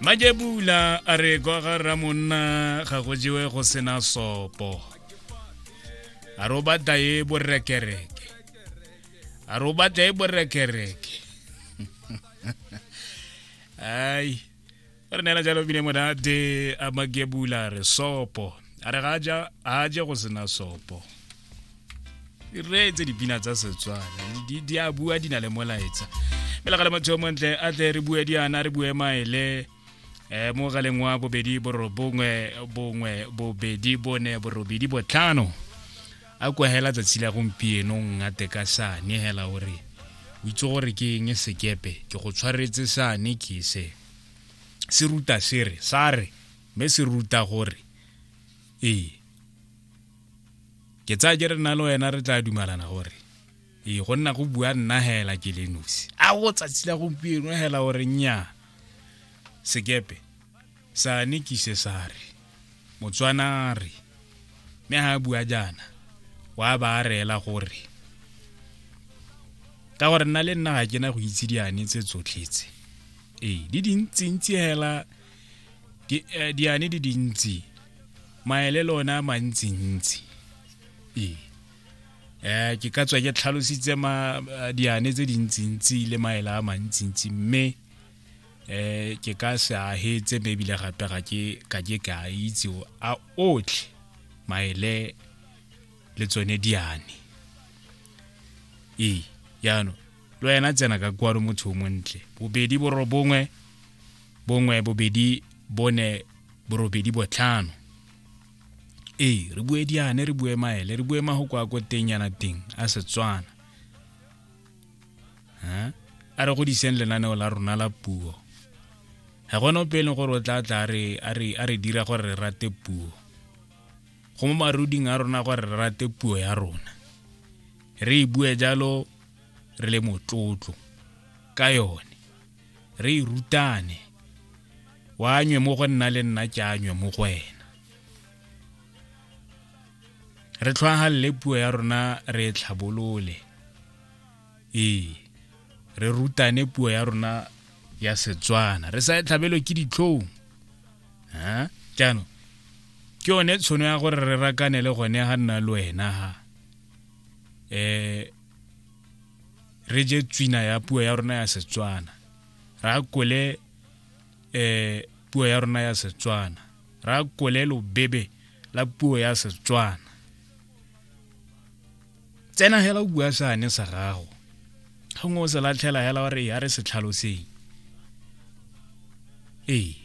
majebula a re kwa ga ramonna ga go jewe go sena sopo a re o batla e borekereke a re o batla e borekereke ai re neela jalo bine monate a makebula re sopo a re ga a je go sena sopo di reetse dipina tsa setswana di a bua di na le molaetsa fela ga le motho yo montle a tle re bue diana re bue maele um mo galeng wa bobedi borobongwe bongwe bobedi bone borobedi botlhano a kwa hela tsatsi la gompieno ngate ka sane hela gore o itse gore ke eng sekepe ke go tshwaretse sane ke se se ruta sere sa re mme se ruta gore ee ke tsaya ke re nna le wena re tla dumalana gore ee go nna go bua nna hela ke le nosi a go tsatsi la gompieno hela gore nnyaa sekepe sane kise sa re motswana re mme ga a bua jaana wa ba a reela gore ka gore nna le nna ga ke na go itse diane tse tsotlhetse ee di dintsintsi hela di eh, diane di dintsi maele le ona mantsintsi ee eh ke ka tswa ke tlhalositse ma eh, diane tse dintsintsi le maele a mantsintsi mme eh ke ka se a hetse mme ebile gape ga ke ka ke ka a itse o- a otlhe maele le tsone diane ee jaanong lo ena tsena ka kwano motho o montle bobedi borobongwe bongwe bobedi bone borobedi botlhano ee re bue diane re bue maele re bue mago kwa ko teng yana teng a setswana a re godiseng lenaneo la rona la puo ga gone ope e leng gore o tla tla a re dira gore re rate puo go mo maruding a rona gore re rate puo ya rona re e bue jalo re le motlotlo ka yone re e rutane wa nywe mo go nna le nna ke anywe mo go wena re tlhwagalele puo ya rona re e tlhabolole ee re rutane puo ya rona ya setswana re sa e tlhabelo ke ditlhong jaanong ke yone tshono ya gore re rakanele gone ga nna le wena ha um re je tswina ya puo ya rona ya setswana ra kole um puo ya rona ya setswana ra kole lobebe la puo ya setswana tsena hela o bua sane sa gago gongwe o se latlhela hela gore ya re se tlhaloseng ee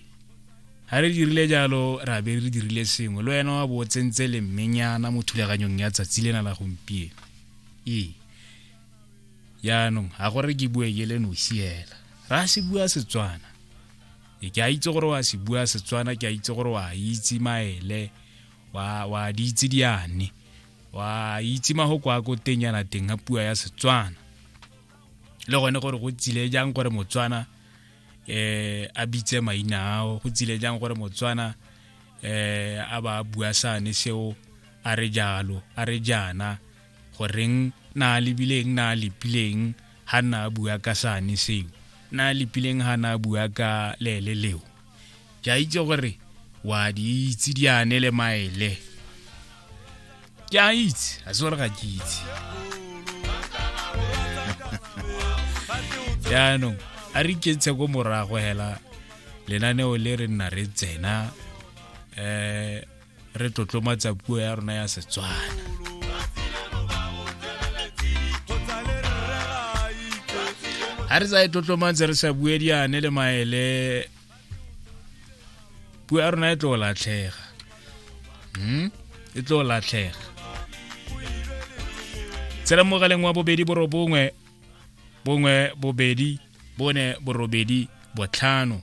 ga re dirile jalo ra be re dirile sengwe le wena wa bo tsentse le mmenyana mo thulaganyong ya tsatsi lena la gompieno ee jaanong ga gore ke bue ke le nosi hela ra se bua setswana e ke a itse gore wa se bua setswana ke a itse gore wa itse maele wa wa di itse diane wa itse magoko a ko teng yana teng ga pua ya setswana le gone gore go tsile jang gore motswana eh a bitse maina ao go tsile jang gore motswana eh a ba bua sane seo a re jalo a re jana goreng na lebileng na lepileng ha na bua ka sane seo na lepileng ha na bua ka lele leo ke a itse gore wa di itse diane le maele ke a itse a se gore ga ke itse jaanong a re iketshe ko morago hela lenaneo le re nna re tsena um re tlotlomatsa puo ya rona ya setswana ga re tsa e tlotlomatse re sa bue diane le maele puo ya rona e tlo latlhega hmm? e tlo latlhega tsela mogaleng wa bobedi borobongwe bongwe bobedi bone borobedi botlhano